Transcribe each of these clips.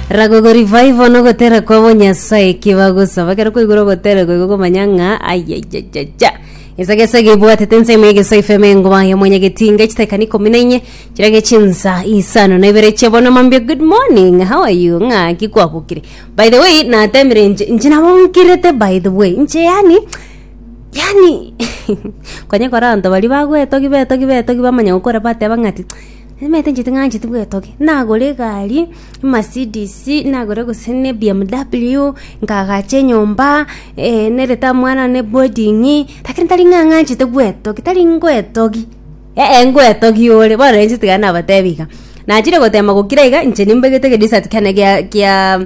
Ragogo revival no gotera kwa bo Nyasaye ki bagosaba kero koigura ogotera goigo komanya ng'a ayayayaja gesa gesa gebwatete ensemo ya gesa ifeme ngoba ya mwanya getinga chitekani kumi na inye chira gechinsa isano na ibere chia bono mambia good morning how are you ng'a ki kwabukire by the way natemire inche inche nabongirete by the way inche yani yani konye kora abanto baria bagwetogi betogi betogi bamanya gokora bateba ng'ati Nimanyete inche ting'ancheti bwetogi nagora egari emercedes nagore gose ne bmw nkagacha enyomba eh, nerete omwana one boarding lakini tari ng'a ng'anchete bwetogi tari ngoetogi ee ngoetogi ore bono rero inche tiga nabatebi iga nachire gotema gokira iga inche nimbegete egedisat kiane gia gia.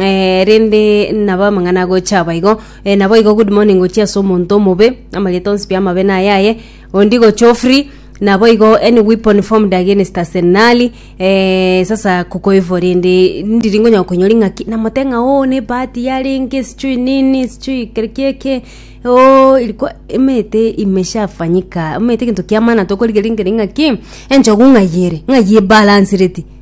Eh, rende nabo amang'ana agocha aba igo eh, naboigo good morning gochia ase omonto omobe amarieta onsi pia amabe na ayaye ondi gocha ofree naboigo any weapon formed against us nali eh, sasa kukoivo rende ndiri ngonyoka konyori ng'aki namote ng'a o ne bahati yarenge sichui nini sichui keri kieke o ilikuwa emete imeshafanyika emete egento kia maana tokorigereria ng'aki enchogu ng'ai ere ng'ai ebalansireti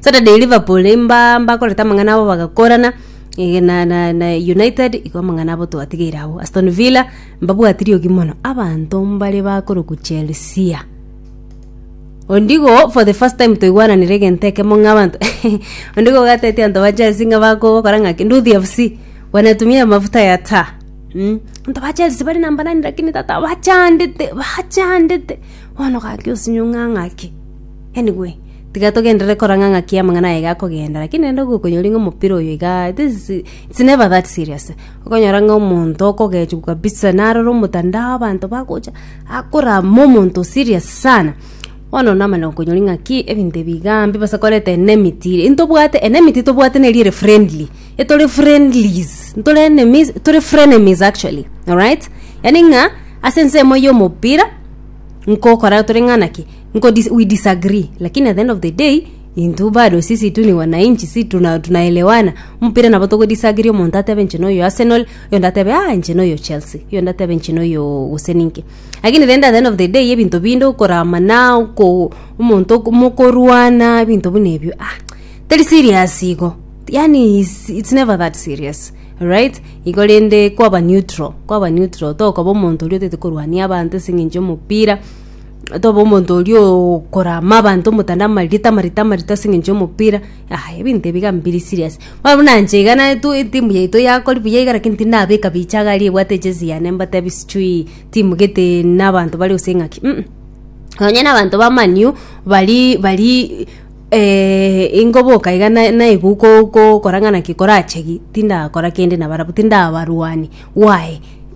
Saturday Liverpool mba mbakorete amang'ana abo bagakorana eh, na, na, na United igo amang'ana abo twatigeire agwo Aston Villa mbabwati riogi mono abanto mbare bakorokwa Chelsea ondigo for the first time toigwananire egento ekemo ng'a abanto ondigo ogatetia abanto ba Chelsea ng'a bakogokora ng'aki nduthi FC wanatumia mafuta ya taa mm. abanto ba Chelsea bari namba nani lakini tata bachandete bachandete bono gaki osinywa ng'a ng'aki Anyway, tiga togenderere korang'a ng'aki amang'ana aye iga akogenda, lakini naende ogokonyori ng'a omopira oyo iga, this is, it's never that serious. Okonyora ng'a omonto okogechwa kabisa narora omotandao abanto bagocha, akorama omonto serious sana. Bono namanya gokonyori ng'aki ebinto ebi igaa mbibe ase koreta enmity ire. Ntobwate enmity tobwate neri ere friendly, etore friendlies, ntore enemies, tore frenemies actually, alright? Yaani ng'a, ase ensemo y'omopira, nkokora tore ng'a naki. nko dis, we disagree lakini at the end of the day intwe bado sisi tu ni wananchi si tuna, tunaelewana mpira nabo togo disagree omonto atebe inche noyo arsenal oyo ndatebe ah inche noyo chelsea oyo ndatebe inche noyo gose ninki lakini rende at the end of the day ebinto binde okoramana oko omonto oko mokorwana ebinto buna ebio ah teri serious igo yaani is, it's never that serious right igo rende kwaba neutral kwaba neutral tokoba omonto oria otagete korwania abanto ase eng'encho y'omopira tobe omonto oria okorama abanto omotanda amarita amarita amarita ase eng'encho y'omopira yaya ebinto ebi iga mbiri serious. Bono buna inche iga naye tu etimu yaito yakori buya iga lakini tindi nabeka bicha iga aria ebwate ejezi yane mbatebi sijui timu gete na abanto bare gose ng'aki um. Nonye na abanto ba man u bari bari ingoboka iga na naibu ko- ko- kora ng'a naki korachegi tindakora kende nabarabwo tindabarwani why.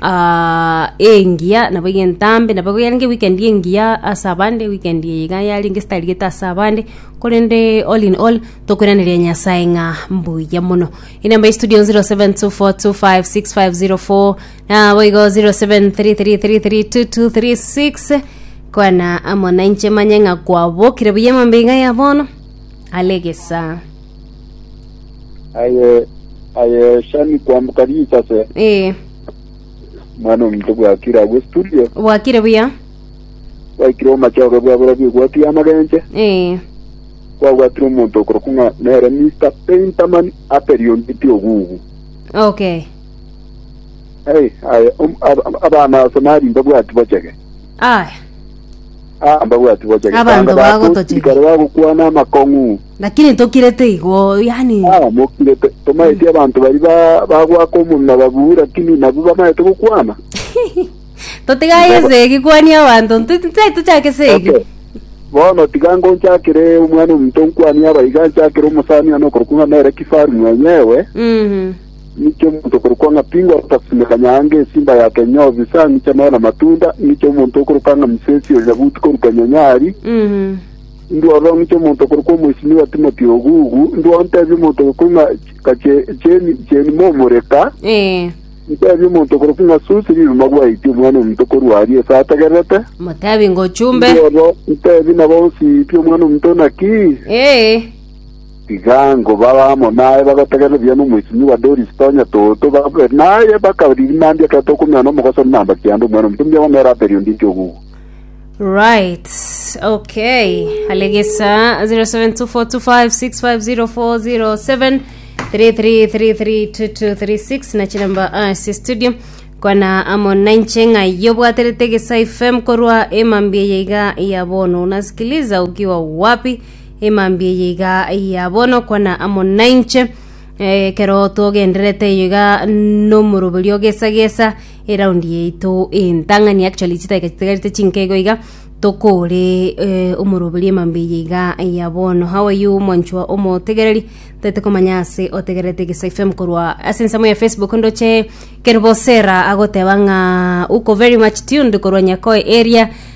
ah, engiya nabo iga entambe nabo iga yarenge weekend engiya ase abande weekend eye iga yarenge esitarigete ase abande korende all in all tokoiraneria nyasae ng'a mbuya mono enamba ya studio 0724256504 nabo igo 0733332236 kwana amo nainche manye ng'a kwabokire buya emambia iga ya bono ale egesaa aye ayeshani kwambuka risase ee mwana omuntu bwakire agwo studio bwakire buya bwaikire omachoge bwabura bigwati amagenche ee kwagwatire omonto okoroku ng'a nere mr painterman aperionditi ogugu okay Hey, aye, om- ab- ab- abana ase nari mbabwati bochege Aya. Ah, mbabwati bocha Abanto getanda bago bago toche. sikare bagokwana amakong'u Lakini tokirete igo, yani. Ah, mokirete tomaeti abanto bari ba- bagwaka omomia babu lakini nabu bamaete gokwana Totigaye segi kwani abanto. Ntai tuchake segi. Okay. bono tiga ngonchakire omwana omonto nkwanie abaiga nchakire omosani ano okorokwa ng'a nere kifaru mwenyewe Mhm. Ng'icha omonto okorokwa ng'a Pingo atasime kanyaanga esimba ya kenyobi sang'icha none amatunda, ng'icha omonto okorokwa ng'a Musesi o Yabuti korwa Kenyonyari. Ndworo ng'icha omonto okorokwa omoisimi wa Timoti ogugu, ndworo ntebie omonto okorokwa ng'a Kache- Cheni Cheni momoreka, ntebie omonto okorokwa ng'a Susi riruma gwaiti Omwana-o-Omonto korwa aria ase ategererete. Motebi ngochumbe. Ndworo ntebie nabo bonsi pi Omwana-o-Omonto naki. Ee. Igango babe amo naye bagotegerera buya nomoichimi wa Doris Tonya Toto babe naye bakaririnandia ekero tokomenyana nomogoso na namba kianda omwana omonto mbuya bamera aperio ndinki ogugu. Right. Okay. Alegesa 0724250407 33332236 na chinamba as studio kwana amo nainche ng'aiyo bwaterete gesa fm korwa emambia yaiga ya bono unasikiliza ukiwa wapi Emambia eye iga ya bono kwana amo nainche, eh, ekero togendererete eyo iga nomoroberi o gesa gesa eraundi yaito entang'ani actually chidakika chitigarete chinke igo iga tokore eh, omoroberi emambia eye iga ya bono. How are you mwanchwa omotegereri? Ntagete komanya ase otegererete Egesae FM korwa ase ensemo ya Facebook ndoche Kerubosera agoteba ng'a uko very much tuned korwa Nyakoe area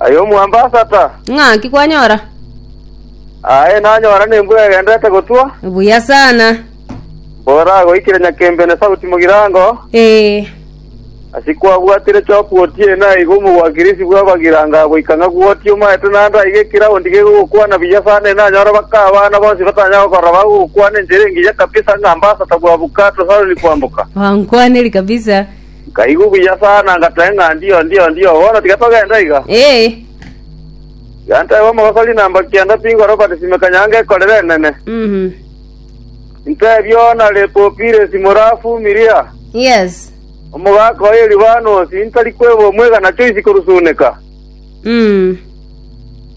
Aye omwambasa ta. Ng'aki kwanyora? Aye nanyora nembura egenderete gotwa. Buya sana. Mbora goikire nyakembe ne sauti mogirango. Ee. Asi kwabwatire chopu otie na igo omogwakirisi bw'abagirango goika ng'a gwoti omaete naende aiga ekiraundi gegogokwana buya sana enanyore baka abana bonsi batanya gokorora bagogokwana enchera engiya kabisa ng'a ambasata bwa Bukato Saloni kwamboka. Wankwaneri kabisa. Nkaigwa buya sana, ngateba ng'a, Ndio, ndio, ndio, bono tiga togende iga. Ee. Tiga ntebe omogosori na mbaki ande pi nkore obatisime kanyange ekorere enene. Mhm. Ntebie ona Lepopiresi more Afumiria, Yes. omogaka oye Libanosi, ntari kweba omwegana choisi korusuneka. Mm.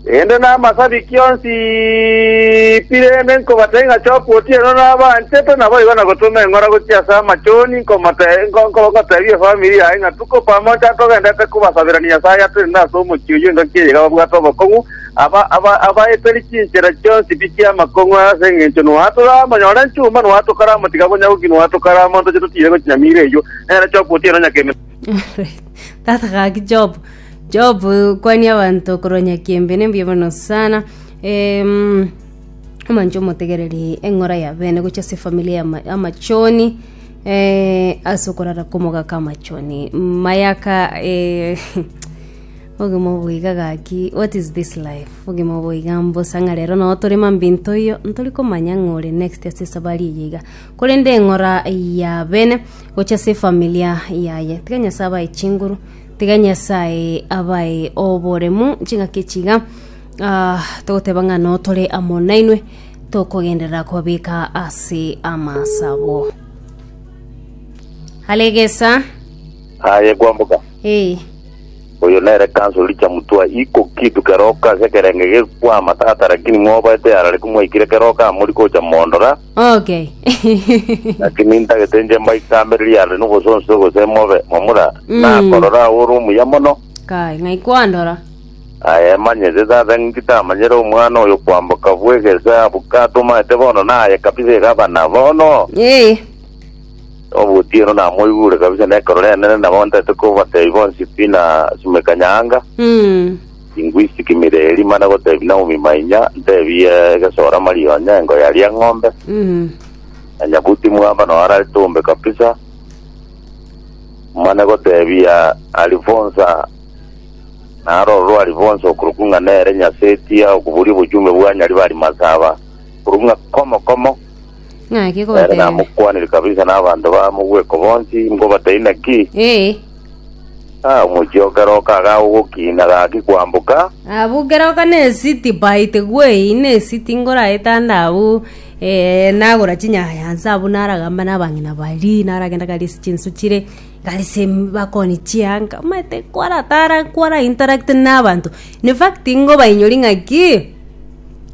Erinde namasabiki onsi pi rende nkobatebia ng'a choka otieno nabanchete naboigo na gotoma eng'ora gochia ase amachoni nkomote- nko- nko- nkotebia efamiri yaye ng'a tuko pamoja togendete kobasaberania Nyasaye ase erinde ase omochie oyio engaki eye iga babwate obokong'u aba- aba- abaeteri chinchera chionsi pi chi'amakong'u ase eng'encho noa toramonyore chuma noa tokaramotikabonya goki noa tokaramwontoche totiire gochi nyamira eyio nere choka otieno nyakeme Tata gaki Job. Job kwani abanto korwa nyakiembe nembuya mono sana. Em, omanche omotegereri eng'ora ya bene gocha ase familia ya ma- amachoni eh, ase okorara komogaka amachoni mayaka eh, obogima obo iga gaki what is this life obogima obo iga mbosa ng'a rero nabo tore mambia ntoiyo ntori komanya ng'a ore next ase esabari eye iga korende eng'ora ya bene. gochia ase efamilia yaye. Tiga Nyasae abae chinguru, tiga Nyasae abae oboremu, ching'aki echi iga ah, togoteba ng'a no tore amo nainwe tokogenderera kobabeka ase amasabo. Alegesa, aye kwamboka eh, oyo nere kanso richa mutwa iko kitu keroka ase ekerenge gekwama tata lakini mwaobaete arareke mwaikire keroka amori gocha mondora Okay. Lakini ntagete inche mbaikambere riarire nogosonsio gose mobe momura, Mm. nakorora aye ore omuya mono. Kai, ng'ai kwandora? Aye emanyete tata ng'inki tamanyere omwana oyo kwamboka bw'egesa abuka tomanyete bono naye kabisa iga abana bono Eh. obotieno namoigure kabisa nekorora enene nabo ntaete kobatebia bonsi pi na sumeka nyaanga Mm. Ingwisiki mireri mana gotebi Naomi mainya ntebie egesora Maria onye engo yaria eng'ombe Mm. na nyabuti mwamba no arari tumbe kabisa mana gotebia Alifonsa naro rwa Alifonsa okuruku ng'a nere nyasetia okuburi obochumbe bwa nyari bari masaba kuruku ng'a komo komo Ng'aki Ere gobatebia? namokwanire kabisa na abanto ba mogweko bonsi, nkobatebie naki? Ee. Ah, omochie o keroka iga ogokina gaki kwamboka, Abwo keroka na esiti by the way na esiti ngoraetande abwo eh, nagora chinyayansa abwo naragamba na abang'ina baria naragenda gari ase chinsu chire gari ase bakoni chianga omanyete kwaratara kwara interact na abanto in fact ngobainyoria ng'aki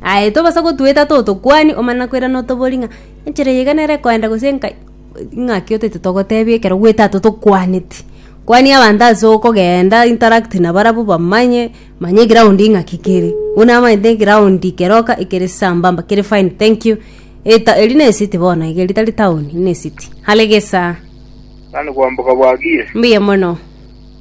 Aye tobasa gotueta too tokwani omana nakoirana otobori ng'a enchera eye iga nere ekoenda gose engai ing'aki otete togotebia ekero gwetato tokwaneti. Kwania abanto ase okogenda interact nabarabwo bamanye manya eground ing'aki kere. Buna amanyete eground keroka ekere sambamba kere fine thank you eta eri ne city bono iga eri tari town eri ne city. Hare gesaa. Yaani kwamboka bwagiire. Mbuya mono.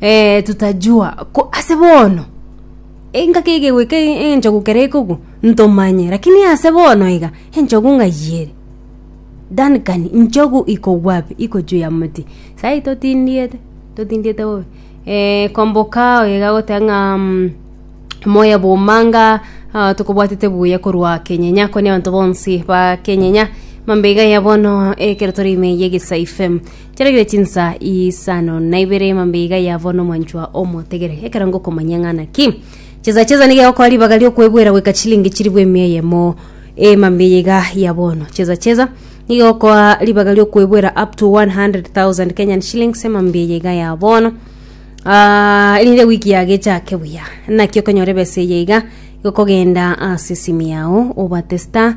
eh, tutajua ko ase bono engaki egegoika enchogu kere ekogu ntomanye lakini ase bono iga enchogu ng'aiyere Duncan nchogu ikogwa pi iko juu ya moti sai totindiete totindiete bobe eh, komboka oyo igagoteba ng'a mm, moya bomanga ah, tokobwatete buya korwa kenyenya koni abanto bonsi ba kenyenya mambeiga ya bono ekero tore ime ye gisa ifem Chiaragire chinsa isano na ibere emambe iga yavwa nomwanchwa omotegere ekero ngokomanya ng'a naki chesa chesa nigegokoa ribaga riokwebuera goika chilingi chiribu emia eyemo emambe eye iga ya bono chesa chesa nigegokoa ribaga riokwebuera up to 100,000 Kenyan shillings emambe eye iga ya bono Ah, erinde wiki yagechake buya naki okonyora ebesa eye iga gokogenda ase esimi yao obate star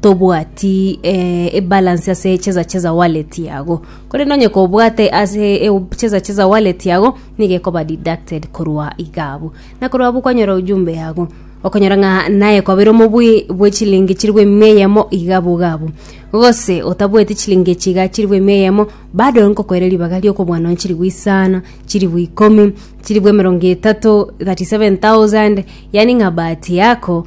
tobwati eh, ebalance ase cheza cheza wallet yago korende onye kobwate ase e- cheza cheza wallet yago nigo ekoba deducted korwa iga abwo na korwa abwo kwanyora ujumbe yago okonyora ng'a naye kwabera omobui bwe chilingi chirigwa emia eyemo iga abwo iga abwo gose otabweti chilingi echi iga chirigwa emia eyemo bado nkokoera ribaga riokobua nonye chirigwa isano chirigwa ikomi chirigwa emerongo etato 37000 yaani ng'a bahati yako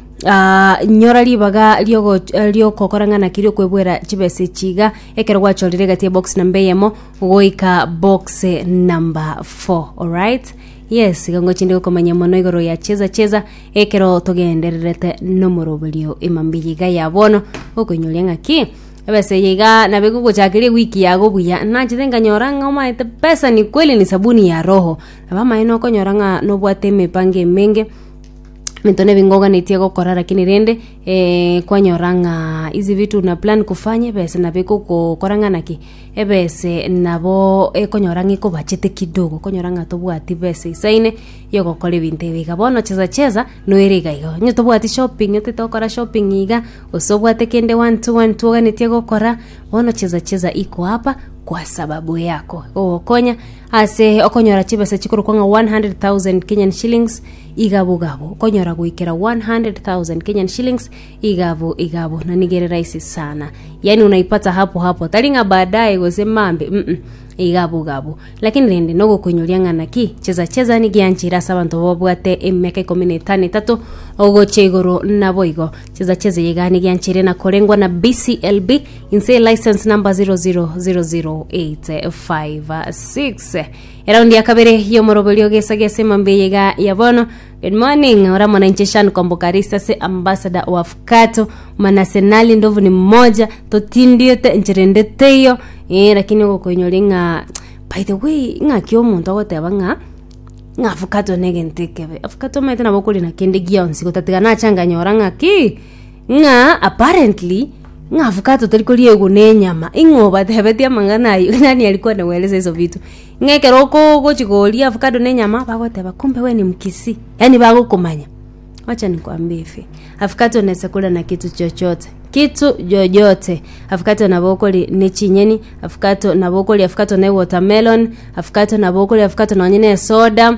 nyora ribaga riogoch- eh, riogokora ng'a naki riokwebwera chibesa echi iga ekero gwachorire egati ya box number eyemo goika box number four alright yes iga ngochi nde gokomanya mono igoro ya cheza cheza ekero togendererete na omoroberio ime mbiya iga ya bono okoinyoria ng'a ki ebesa eye iga nabo egogochakeria ewiki yago buya nachete nkanyora ng'a omanyete pesa ni kweli ni sabuni ya roho nabo amaene okonyora ng'a nobwate emipango emenge. Mento nebingo oganetie gokora lakini rende eh, kwanyora ng'a hizi vitu na plan kufanya ebese nabo ekogokora ng'a naki ebese nabo ekonyora ng'a ekobachete kidogo okonyora ng'a tobwati besa isaine yogokora ebinto ebi iga bono chesa chesa noire iga iga onye tobwati shopping otete gokora shopping iga gose obwate kende one two one two oganetie gokora bono chesa chesa iko apa kwa sababu yako egogokonya ase okonyora chibesa chikorokwa ng'a 100,000 kenyan shillings Igabo igabo, okonyora goikera 100,000 Kenyan shillings igabo igabo, na nigo ere rahisi sana. Yani unaipata hapo hapo, tari ng'a baadaye gose mambe mm -mm. igabo igabo. Lakini rende nogokoinyoria ng'a naki cheza cheza nigianchire ase abanto babwate emiaka ikomi na etano etato ogochia igoro naboigo. Cheza cheza eye iga nigianchire na korengwa na BCLB inse license number 0000856 Eraundi ya kabere y'omoroberio ogesage ase emambia eye iga ya bono. Good morning, ore amo na inche Shan Kombokarist ase Ambassador wa Fukato, mana ase Nali ndovu ni mmoja, totindirete enchera ende teiyo, eh, lakini ogokoinyori ng'a by the way, ng'aki omonto agoteba ng'a ng'a Fukato ne egento ekebe. Fukato omanyete nabo okore na kende gionsi, gotatiga nacha nganyora ng'a ki ng'a apparently ng'a avocado tari koriegwa na enyama ing'o obatebetie amang'ana ayio nani ari kwane weresa iso vitu ng'a ekero okoo ogochi koria avocado na enyama bagoteba kumbe we ni mkisii yaani bagokomanya wacha nikwambie hivi avocado nesa koria na kitu chochote kitu yoyote avocado nabo okoria ne chinyeni avocado nabo okoria avocado ne watermelon avocado nabo okoria avocado nonye na esoda.